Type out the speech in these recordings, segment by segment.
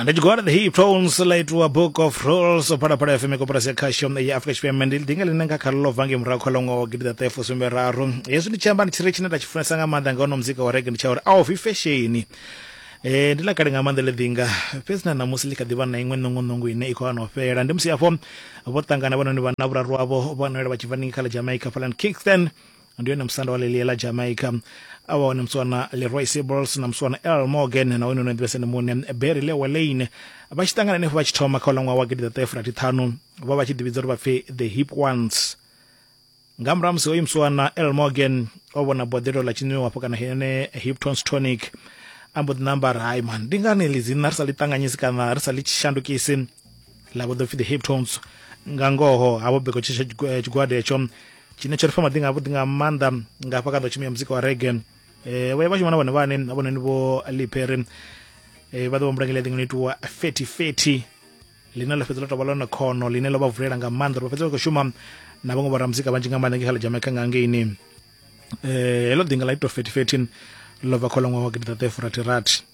ndi tshigwada the hip tones la itiwa book of rolls phalaphala fm koporasi ya khasho ya afrika tshipembe ndi dinga line nga kha ḽo bva ngei murahu kha ḽo ngo gidi ḓa ṱefo sumbe raru hezwi ndi tshi amba ndi tshire tshine nda tshi funesa nga maanḓa nga ono muzika wa rege ndi tsha uri a ofi fesheni Eh, ndi ḽa kale nga maanḓa ḽi ḓinga fhedzi na ṋamusi ḽi kha ḓivha na iṅwe ṋongoṋongo ine i khou ano fhela ndi musi afho vho ṱangana vhanoni vhanna vhuraru wavho vho noela vha tshi bva ningi kha ḽa jamaica falan kingston ndi yone musanda wa lelie la jamaica a wa hone muswana leroy sibbles na muswana l morgan na wene no ḓivhesa ndi muṋe berry lewa lane vha tshi ṱangana henefho vha tshi thoma kha u ḽa ṅwaha wa gidiḓaṱahefurathi ṱhanu vha vha tshi ḓivhidza uri vha pfhi the hip ones nga murahu musi hoyu muswana l morgan o vhona boḓelo ḽa tshinwiwa hafho kana hene hiptons tonic a mbo ḓi namba ri hai man ndi ngani ḽi dzina ri sa ḽi ṱanganyisi kana ri sa ḽi shandukisi ḽa vho ḓo pfi the heptones nga ngoho ha vho beko tshisha eh, tshigwada hetsho tshine tsho ri fa maḓi nga vhuḓi nga maanḓa nga hafha kha ḓo tshumia muzika wa rege um eh, vho ya vha shuma na vhone vhane avhononi vho lipere um eh, vha ḓo vha mbulangela ḽiṅwe no itiwa feti feti ḽine ḽo fhedza ḽo tovha ḽone khono ḽine ḽo vha vulela nga maanḓa uri vha fhedza vha khou shuma na vhaṅwe vhora muzika vhanzhi nga maanḓa nge kha ḽa jamaica nga ngeini um heḽo ḓinga ḽa ito feti feti ḽo bva kho ḽa ṅwaha wa gidiḓaṱefurathirathi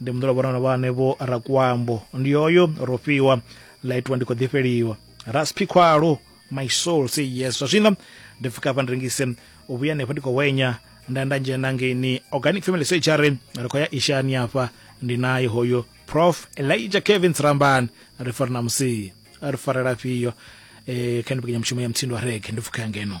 ndi muḓolo vhorano vha hanevho rakuambo ndi yoyo ro fhiwa ḽa itiwa ndi khou ḓifheliwa raspi khwalo my soul say yes zwa zwino ndi pfuka hafha ndi rengise u vhuya henefho ndi khou hwenya nda nda dzhena ngeini organic family surgery ri khou ya ishani hafha ndi naye hoyo prof elijah kevin tsirambani ri fari na musi ri farela fhiyo um kha ndi pekenyamushumo ya mutsindo wa rege ndi pfukha ya ngeno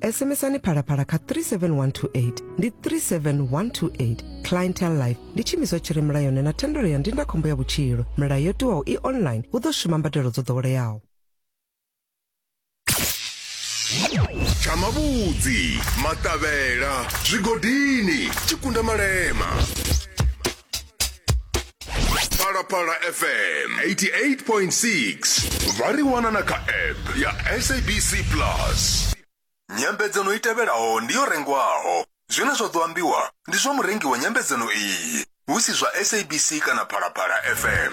sms-ani phalaphala kha 37128 ndi 37128 clientele life ndi tshiimiswa tshi re mulayoni na thendelo ya ndindakhombo ya vhutshilo milayo yo tiwaho i online hu ḓo shuma mbadelo dzo ḓoweleaho tsha mavhudzi maṱavhela zwigodini tshikunda malema phalaphala fm 88.6 vha ri wana na kha app ya sabc plus nyambedzano i tevhelaho ndi yo rengwaho zwine zwa ḓo ambiwa ndi zwa murengi wa nyambedzano iyi hu si zwa sabc kana phalaphala fm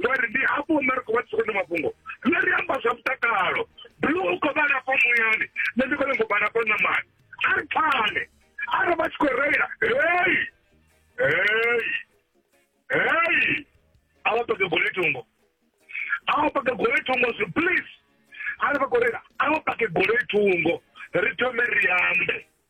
ngori ndi hafho hune ri khou vha tshikoni mafhungo nṋe ri amba zwa mutakalo blu u khou vhala fo muyani nṋe ndi khou nyanga u vhala fo ṋamani a ri pfane a ri vha tshi khou reila hei hei hei a vha pake gole thungo a vha pake gole thungo zwi please a ri vha khou reila a vha pake gole thungo ri thome ri ambe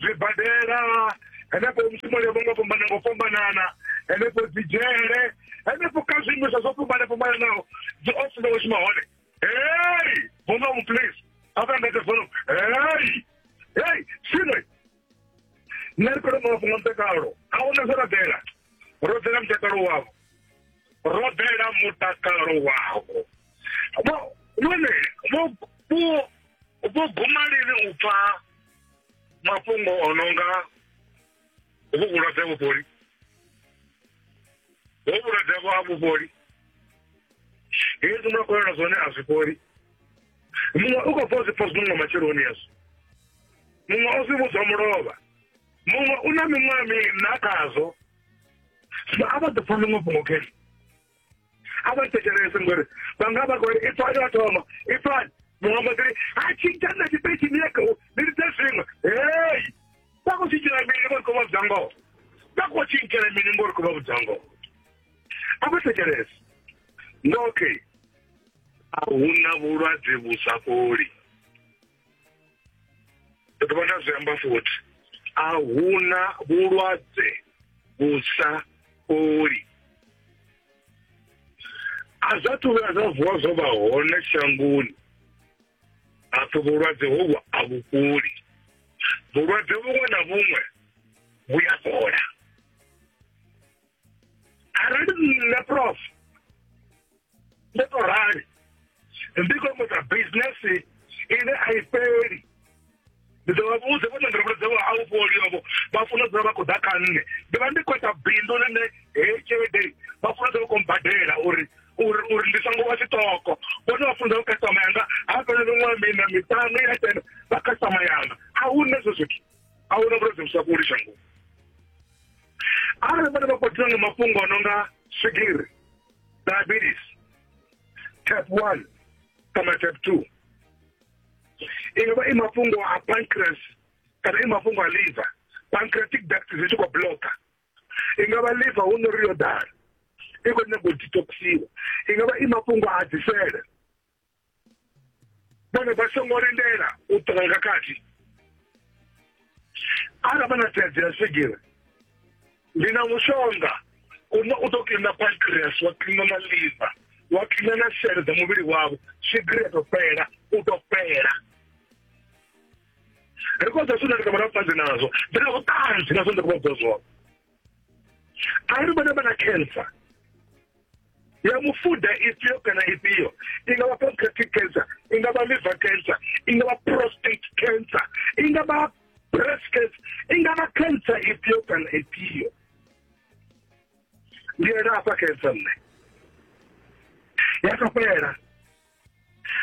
zwibadela henefho mushumoni yo vhongo fhambana ngo fhambanana henefho dzi dzhele henefho kha zwiimiswa zwo fhambana fhambananaho dzi ofisi dza vhashuma hone hey bonga mu please avangate fono hey hey sine nṋe ri khou mafhungo a mutakalo a huna zwo rabela ro ḓela mutakalo wavho ro ḓela mutakalo wavho vho vhone vho vho vho guma lini u pfa mafhungo o no nga hovhu vhulwadze ha vhufholi hovhu vhulwadze havho ha vhufholi hezwi mwa kolela zwone a zwi fholi muṅwe u khou pfa u zwi pfa zwinunga matsheloni hezwo muṅwe o zwi vhudzwa mulovha muṅwe u na miṅwaha mina khazwo zwino a vha ḓo pfa ḽiṅwe fhungo khezwi a vha thetshelese ngori vha nga vha kori ipfa yo thoma ipfani muṅwe mbo ḓiri a tshintsha na tshipeitshi ni yeke ni lidze zwiṅwe hei vha khou tshintshela mini ngori khou vha vhudza ngoho vha khou tshintshela mini ngori khou vha vhudza ngoho a vha thetshelese nga okay a hu na vhulwadze vhu sa fholi ndi dovha nda zwi amba futhi a huna vhulwadze vhu sa fholi a zwa thu vhuya zwa vuwa zwo vha hone shangoni hapfi vhulwadze hovhu a vhu fholi vhulwadze vhuṅwe na vhuṅwe vhu ya fhola arali nṋe prof ndo to rali ndi khou mboḓa bisinesi ine a i fheli ndi ḓo vha vhudze vho nonḓorobolo dzavho a u fholi ovho vha funa u dzula vha khou ḓa kha nṋe ndi vha ndi khou ita bindu ḽine heyi tshelede vha funa u dzula vha khou mbadela uri uri uri ndi songo vha tshiṱoko vhone vha funza vhukasitama yanga ha fhela miṅwaha mina miṱanu ya tenda vha kasitama yanga a hu na ezwo zwithu a huna vhulwadze vhu sa fholi shangoni arali vhana vha kwatiwa nga mafhungo a no nga swigiri diabetes type one kana type two i nga vha i mafhungo a pancreas kana i mafhungo a liver pancreatic duct zwi tshi khou bloka i nga vha liver hu no ri yo ḓala i khou nyanga u detoxiwa i nga vha i mafhungo a dzisele vhone vha songo lindela u ṱoka nga khathi arali vha na thaidzo ya swigiri ndi na mushonga une u ḓo kiḽina pancreas wa kiḽina na liver wa kiḽina na sele dza muvhili wavho swigiri ya tou fhela u tou fhela ri khou zwa zwine ri nga vha na vhuṱanzi nazwo ndi na vhuṱanzi nazwo ndi khou vha bva zwone ari vana vana cancer ya mufuda ifhio kana ifhio i nga vha pancreatic cancer i nga vha liver cancer i nga vha prostate cancer i nga vha breast cancer i nga vha cancer ifhio kana ifhio ndi ena afha cancer nṋe ya ka fhela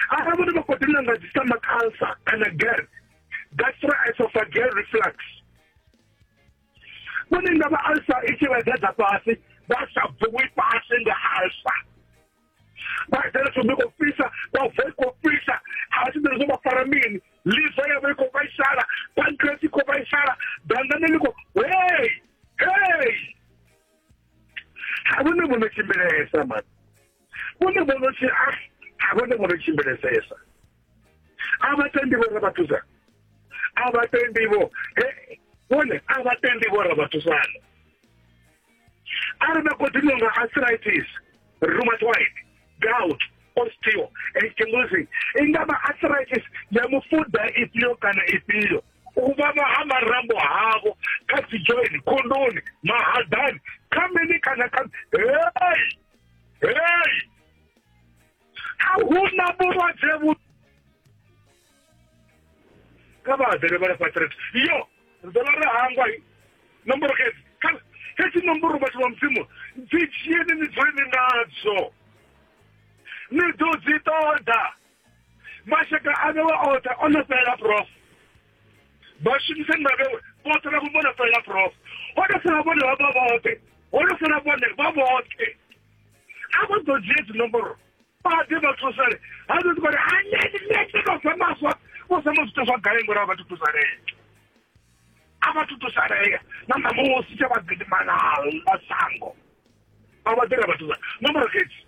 arali vhone vha khou ḓi nanga dzi sama cancer kana gerd gastroesophageal reflux vhone nga vha alsa i tshi vha dza fhasi vha sa bvuwi fhasi nga alsa vha dzela tsho mbiko fisa vha bva i khou fisa a vha tshiḓele zwo vha fara mini liva ya vha i khou vhaisala pancreas i khou vhaisala dangane ḽi khou hei hei ha vhone vho no tshimbilesa mani vhone vhono si a ah, ha vhone vhono tshimbilesesa a vha tendi vho ra vha thusa a vha tendi vho vhone a vha tendi vho ra vha thusana a ri na continue nga arthritis rheumatoid gout osteo ankylosing i nga vha arthritis ya mufuda ifhio kana ifhio u vhavha ha marambo havo kha dzi joini khondoni mahadani kha mini kana kha hei hei a huna vhulwadze vhu kha vha ḓele vha lafha tshelede yo ḓo vha ri hangwa nomboro xedzi xedzi nomboro vhathu vha mudzimu dzi dzhieni ni dzule ni nadzo ni ḓo dzi ṱoḓa mashaka a vhewe oṱhe o no fhelela prof vhashumisani vha vhewe vhoṱhe vha vho no fhelela prof ho no fela vhone vha vha vhoṱhe ho no fela vhone vha vhoṱhe a vha ḓo dzhie dzinomboro baḓe vha thusale ha ḓo ḓi kone aneni nete vha fa maswa vho sa muzwitha zwa gai ngori a vha thutusalee a vha thutusalee na ṋamusi tsha vha gidimanaḽa sango a vha ḓira vha thusa nomboro khetsi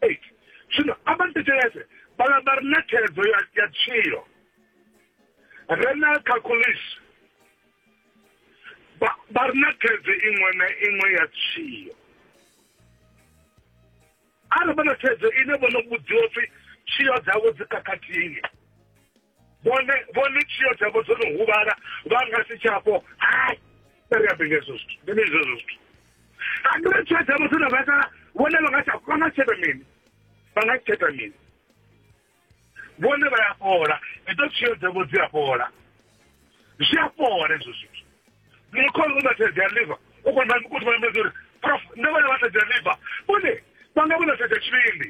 8 zwino a vha thetshelese vhala vha re na theledzo ya ya tshilo re na khakhulisi vha vha re na theledzo iṅwe na iṅwe ya tshilo arali vha na theledzo ine vho no vhudziwa pfi tshilo dzavho dzi khakhathini vhone vhone tshio dzavho dzo no huvhala vha nga si tshapo hai ri ambe nga hezwo zwithu ndi mini zwezwo zwithu andire tshio dzavho dzo no vhaisala vhone vha nga tsha vha nga tsheta mini vha nga tsheta mini vhone vha ya fhola idzo tshio dzavho dzi a fhola zwi a fhola hezwo zwithu mukhono u matshedzi a liva u kona u kona u uri prof nṋe vhone vha tshedzi a liva vhone vha nga vhona tshedzi a tshivhindi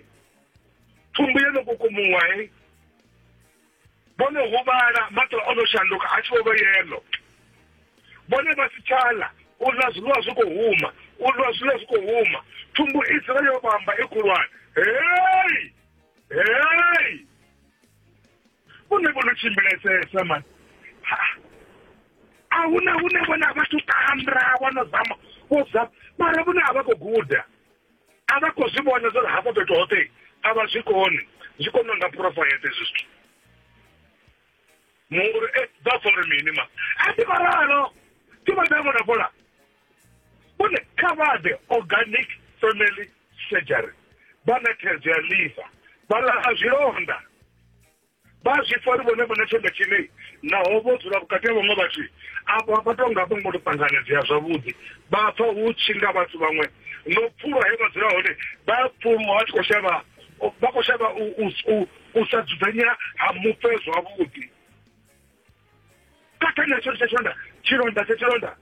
thumbu yo no kukumuwa he vhone huvhala maṱo o no shanduka a tshi vho vha yelo vhone vha si tshala u ḽa zwiḽiwa zwi khou huma u ḽa zwiḽiwa zwi khou huma thumbu i dzula yo vhamba i khulwane hei hei vhone vho no tshimbilesesa mani a huna hune vhone a vha thu tambra vho no zama vho zama mara vhone a vha khou guda a vha khou zwi vhona zwa uri hafho fhethu hoṱhe a vha zwi koni zwi koni nga phurofayete hezwi zwithu munguri e vha pfa uri mini ma a ti varalo ti va ta vona fola kune kha vha ḓe organic family surgery vha na thaidzo ya liver vha laha zwilonda vha zwi pfa uri vhone vha na tshanḓa tshine naho vho dzula vhukati ha vhaṅwe vhathu afho vha tou nga vho ngo to ṱanganedzea zwavhuḓi vha pfa hu tshi nga vhathu vhaṅwe no pfulwa he vha dzula hone vha pfulwa vha tshi khou shavha vha khou shavha u sa dzudzanya ha mufe zwavhuḓi kathana tsho tsha tshanḓa tshilonda tsha tshilonda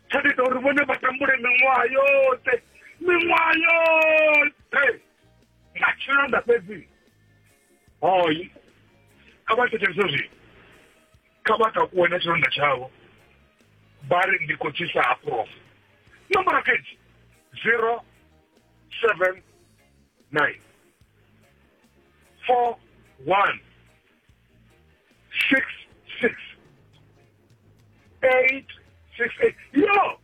tsha ita uri vhone vha tambule miṅwaha yoṱhe miṅwaha yoṱhe nga tshilonda fhedzi hoi kha vha thetshelese zwino kha vha takuwe na tshilonda tshavho vha ri ndi khou tshisa ha prof nomboro fhedzi zero seven nine four one six six eight six eight yo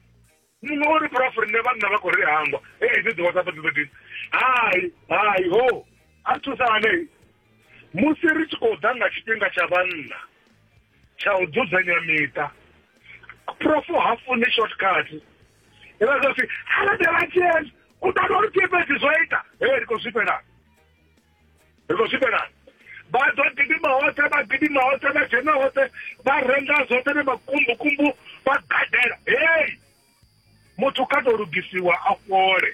muṅwe uri prof nṋe vhanna vha khou ri hangwa ee dzi ḓiwa sapa dzidzo dini hai hai ho a thusa hanei musi ri tshi khou ḓa nga tshifhinga tsha vhanna tsha u dzudzanya miṱa prof ha funi shortcut ivha zwa pfi halabela chen u ṱana uri pfepedzi zwo ita ee ri khou zwifhelana ri khou swikelela vha ḓo gidima hoṱhe vha gidima hoṱhe vha dzhena hoṱhe vha renga zwoṱhe ne makumbukumbu vha gadela hei muthu kha tou lugisiwa a fhole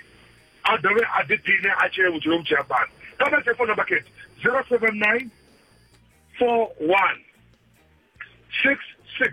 a dovhe a ḓiphine a tshile vhutshilo vhu tshi ya fhano kha vha tshe fona bakete zero seven nine four one six six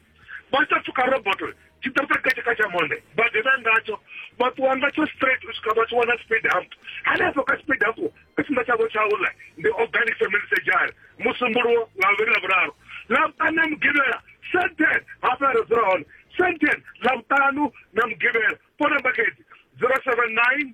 vha sa pfuka roboto tshi ḓo ita katsha katsha monde vha ḓivha ngatsho vha ṱuwa ngatsho straight u swika vha tshi wana speed hump hanefho kha speed hump tshipiḓa tshavho tsha uḽa ndi organic family surgery musumbuluwo nga vhuvhili na vhuraru lavhutane mugivhela senten hafha ro dzula hone senten lavhutanu na mugivhela phone number khedzi zero seven nine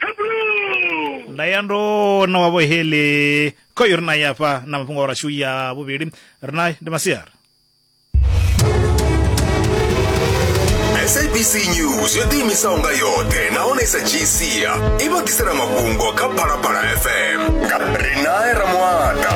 Hebrew! nda ya ndo na wavho heli kho yo ri na ya fha na mafhungo a rashu ya vhuvhili ri naye ndi masiari sabc news yo ḓiimisaho nga yoṱhe nahone sa gc i vha ḓisela mafhungo kha phalaphala fm nga rinae ramuata